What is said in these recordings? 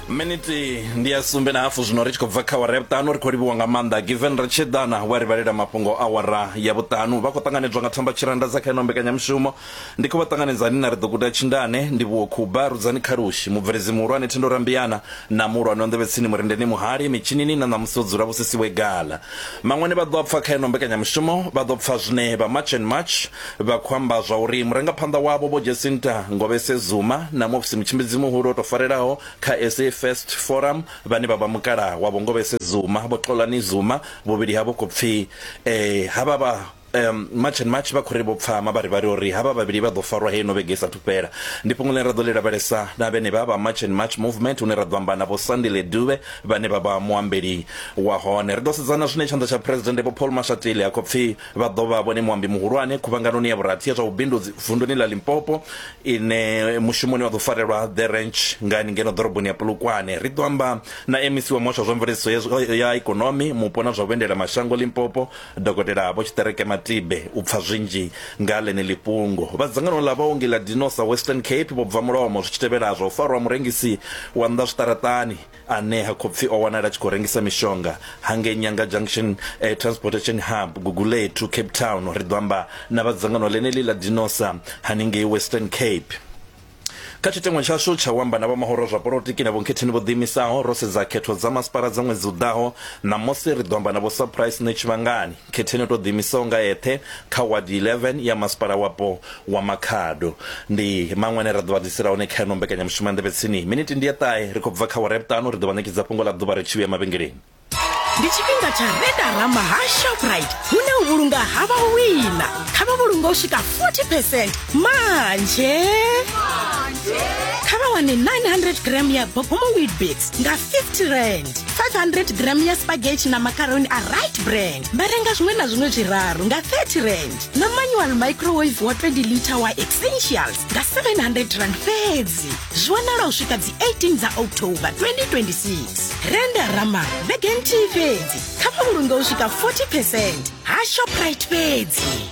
miniti ndi ya sumbe na hafu zwino ri tshi khou bva kha wara ya vhuṱanu ri khou livhiwa nga maanḓa given ri tshi ḓana wa ri vhalela mafhungo a wara ya vhuṱanu vha khou ṱanganedzwa nga thamba tshiranda dza kha ino mbekanyamushumo ndi khou vha ṱanganedza ni na ri ḓo guda tshindane ndi vhuwo khuba rudzani khalushi mubveledzi muhulwane thendo rambiyana na muhulwane wa nḓevhetsini murendeni muhali mitshinini na ṋamusi o dzula vhusisiwe gala maṅwani vha ḓo pfa kha ino mbekanyamushumo vha ḓo pfa zwine vha march and march Vha khou amba zwa uri murangaphanḓa wavho Vho Jacinta Ngobese Zuma na Muofisi Mutshimbidzi Muhulu o tou farelaho kha SA First Forum vhane vha vha mukalaha wa Vho Ngobese Zuma, Vho Xolani Zuma, vhuvhili havho khou pfi havha vha March and March vha khou ri vho pfa mavharivhari uri havha vhavhili vha ḓo farwa heino vhege i sathu fhela. Ndi fhungo ḽine ra ḓo ḽi lavhelesa na vhenevha vha March and March Movement hune ra ḓo amba na Vho Sandile Dube vhane vha vha muambeli wa hone. Ri ḓo sedza na zwine Tshanḓa tsha Phresidennde Vho Paul Mashatile a khou pfi. Vha ḓo vha vhone muambi muhulwane khuvhanganoni ya vhurathi ya zwa vhubindudzi vunduni ḽa Limpopo ine mushumoni wa ḓo farelwa The Ranch ngani ngeno ḓoroboni ya Polokwane. Ri ḓo amba na MEC wa Muhasho wa zwa Mveledziso ya Ikonomi, Mupo na zwa Vhuendela mashango Limpopo, Dokotela Vho Tshiṱereke Matibe u pfa zwinzhi nga ḽeneḽi fhungo. Vha dzangano ḽa vhaongi ḽa Dinosa Western Cape vho bva mulomo zwi tshi tevhela zwa u farwa ha murengisi wa nnḓa zwiṱaraṱani. ane ha khou pfi o wanala a tshi khou rengisa mishonga hangei Nyanga Junction eh, Transportation Hub Gugulethu Cape Town ri ḓo amba na vha dzangano ḽeneḽi ḽa Dinosa haningei Western Cape kha tshiteṅwa tshashu tsha u amba na vhomahoro zwa polotiki na vhonkhetheni vho ḓiimisaho ro sedza khetho dza masipala dza ṅwedzi u ḓaho ṋamusi ri ḓo amba na vho surprise ne tshivhangani Khetheni o tou ḓiimisaho nga eṱhe kha Wadi 11 ya Masipala Wapo wa Makhado. Ndi maṅwe ane ra ḓo vha ḓisela one kha ino mbekanyamushumo ya Nḓevhe Tsini. Minithi ndi ya ṱahe, ri khou bva kha awara ya vhuṱanu, ri ḓo vha ṋekedza fhungo ḽa ḓuvha ri tshi vhuya mavhengeleni. Ndi tshifhinga tsha Redarama ha Shoprite hune u vhulunga ha vha u wina. Kha vha vhulunge u swika 40 percent manzhe. Kha vha wane 900 gram ya Bogomo Weetbix. nga 50 rand 500 gram ya spaghetti na macaroni a right brand vha renga zwiṅwe na zwiṅwe zwiraru nga 30 rand na manual microwave wa 20 liter wa essentials nga 700 rand fhedzi zwi wanala u swika dzi 18 dza october 2026 renda rama vhege nthihi fhedzi kha mavhulunge u swika 40 percent ha shoprite fhedzi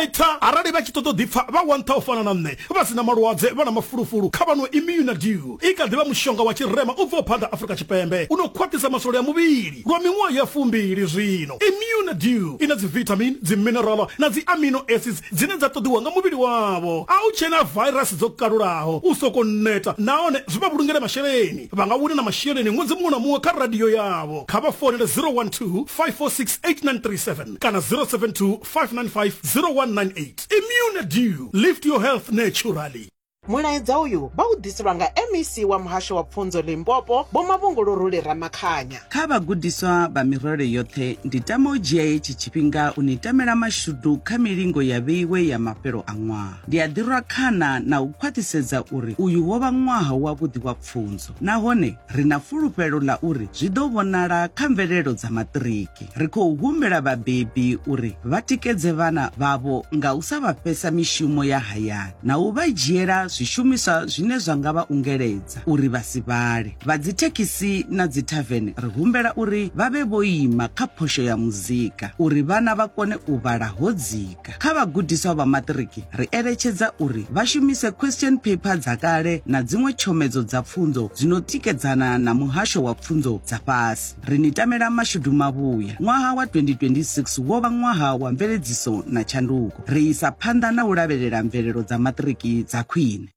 eita arali vha tshi ṱoḓa u ḓipfa vha wantha u fana na nṋe vha si na malwadze vha na mafulufulu kha vha no imuna dew i kha ḓi vha mushonga wa tshirema u bvaho phanḓa afurika tshipembe u no khwaṱhisa masole a muvhili lwa miṅwaha ya fumbili zwino imuna dew i na dzivitamin dziminerala na dzi amino acids dzine dza ṱoḓiwa nga muvhili wavho a u tshena vairasi dzo kalulaho u soko neta nahone zwi vha vhulungele masheleni vha nga wina na masheleni ṅwedzi muṅwe na muṅwe kha radio yavho kha vha founele 012 546 8937 kana 072 595 0198 immune dew lift your health naturally mulaedza uyu vha u ḓiselwa nga mec wa muhasho wa pfunzo limpopo vho mavhunguluruli ramakhanya kha vhagudiswa vha mirole yoṱhe ndi tama u dzhia hetshi tshifhinga u ni tamela mashudu kha milingo ya vheiwe ya mafhelo a ṅwaha Ndi a ḓirwa khana na u khwaṱhisedza uri uyu wo vha ṅwaha wavhuḓi wa pfunzo nahone ri na fulufhelo ḽa uri zwi ḓo vhonala kha mvelelo dza maṱiriki. Ri khou humbela vhabebi uri vha tikedze vhana vhavho nga u sa vha fhesa mishumo ya hayani na u vha dzhiela zwishumiswa zwine zwa nga vha ungeledza uri vha si vhale. Vha dzithekhisi na dzithavene ri humbela uri vha vhe vho ima kha phosho ya muzika uri vhana vha kone u vhala ho dzika. Afrika. Kha vhagudiswa vha maṱiriki, ri eletshedza uri vha shumise question paper dza kale na dziṅwe tshomedzo dza pfunzo dzi no tikedzana na muhasho wa pfunzo dza fhasi. Ri ni tamela mashudu mavhuya. Ṅwaha wa 2026 wo vha ṅwaha wa mveledziso na tshanduko. Ri isa phanḓa na u lavhelela mvelelo dza maṱiriki dza khwine.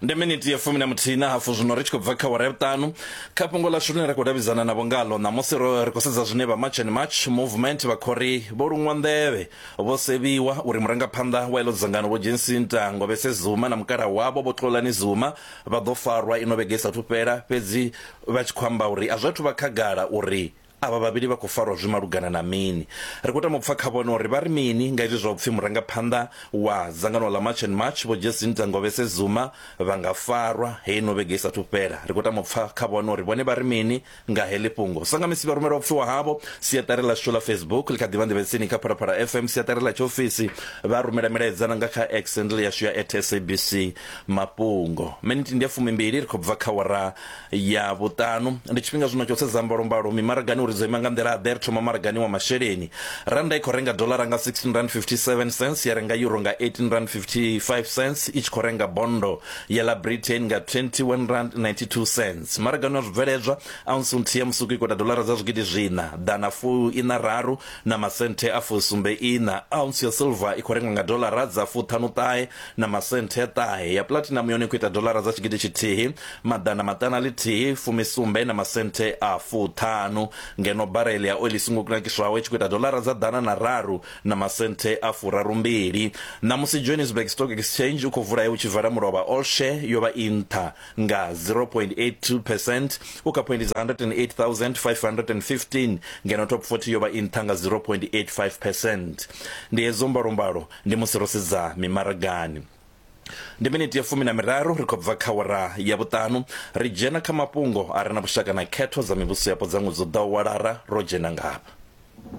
ndi miniti ya fumi na muthihi na hafu zwino ri tshi khou bva kha wara ya vhuṱanu kha fhungo ḽashu ḽine ra khou davhidzana navho ngalo ṋamusi ro ri khou sedza zwine vha march and march movement vha khori vho luṅwa nḓevhe vho sevhiwa uri murangaphanḓa wa iḽo dzangano vho jensinta ngobese zuma na mukala wavho vho tlolani zuma vha ḓo farwa ino vhege isathu fhela fhedzi vha tshi khou amba uri a zwi athu vha khagala uri Avha vhavhili vha khou farwa zwi malugana na mini? Ri khou tama u pfa kha vhone uri vha ri mini nga izwi zwa u pfi murangaphanḓa wa dzangano ḽa March and March Vho Jacinta Ngobese Zuma vha nga farwa heyi no vhege i sathu fhela. Ri khou tama u pfa kha vhone uri vhone vha ri mini nga heḽi fhungo. Sa nga misi vha rumela u pfiwa havho. Siaṱari ḽashu ḽa Facebook ḽi kha ḓivha nḓevhe tsini kha Phalaphala FM siaṱari ḽa tshiofisi. Vha rumela milaedza na nga kha X handle yashu ya at SABC mafhungo. Minithi ndi ya fumimbili ri khou bva kha awara ya vhuṱanu ndi tshifhinga zwino tsho sedza mbalombalo mimaragani uri dzo ima nga nḓila ḓe ri thoma maragani wa masheleni randa i khou renga dolara nga 16 rand 57 cents ya renga euro nga 18 rand 55 cents i tshi khou renga bondo ya la britain nga 21 rand 92 cents maragani wa zwibveledzwa ounce nthihi ya musuku i khou ita dolara dza zwigidi zwina ḓana fu ina raru na masenthe a fusumbe ina ounce ya silver i khou rengwa nga dolara dza fuṱhanu ṱahe na masenthe a ṱahe ya pulatinamu yone khou ita dolara dza tshigidi tshithihi maḓana maṱanu a ḽithihi fumisumbe na masenthe a fuṱhanu ngeno barele ya oili songo kunakiswaho i tshi khou ita dolara dza ḓana na raru na masenthe a furarumbili ṋamusi johannesburg stock exchange u khou vula he u tshi vala mulovha all share yo vha i nṱha nga 0.82 percent u kha phoindi dza 108515 ngeno top 40 yo vha i nṱha nga 0.85 percent ndi hedzo mbalombalo Ndi musi ro sedza mimaragani. Ndi miniti ya fumi na miraru ri khou bva kha awara ya vhuṱanu, ri dzhena kha mafhungo a re na vhushaka na khetho dza mivhusoyapo dza ṅwedzi u ḓaho wa Lara. Ro dzhena ngafha.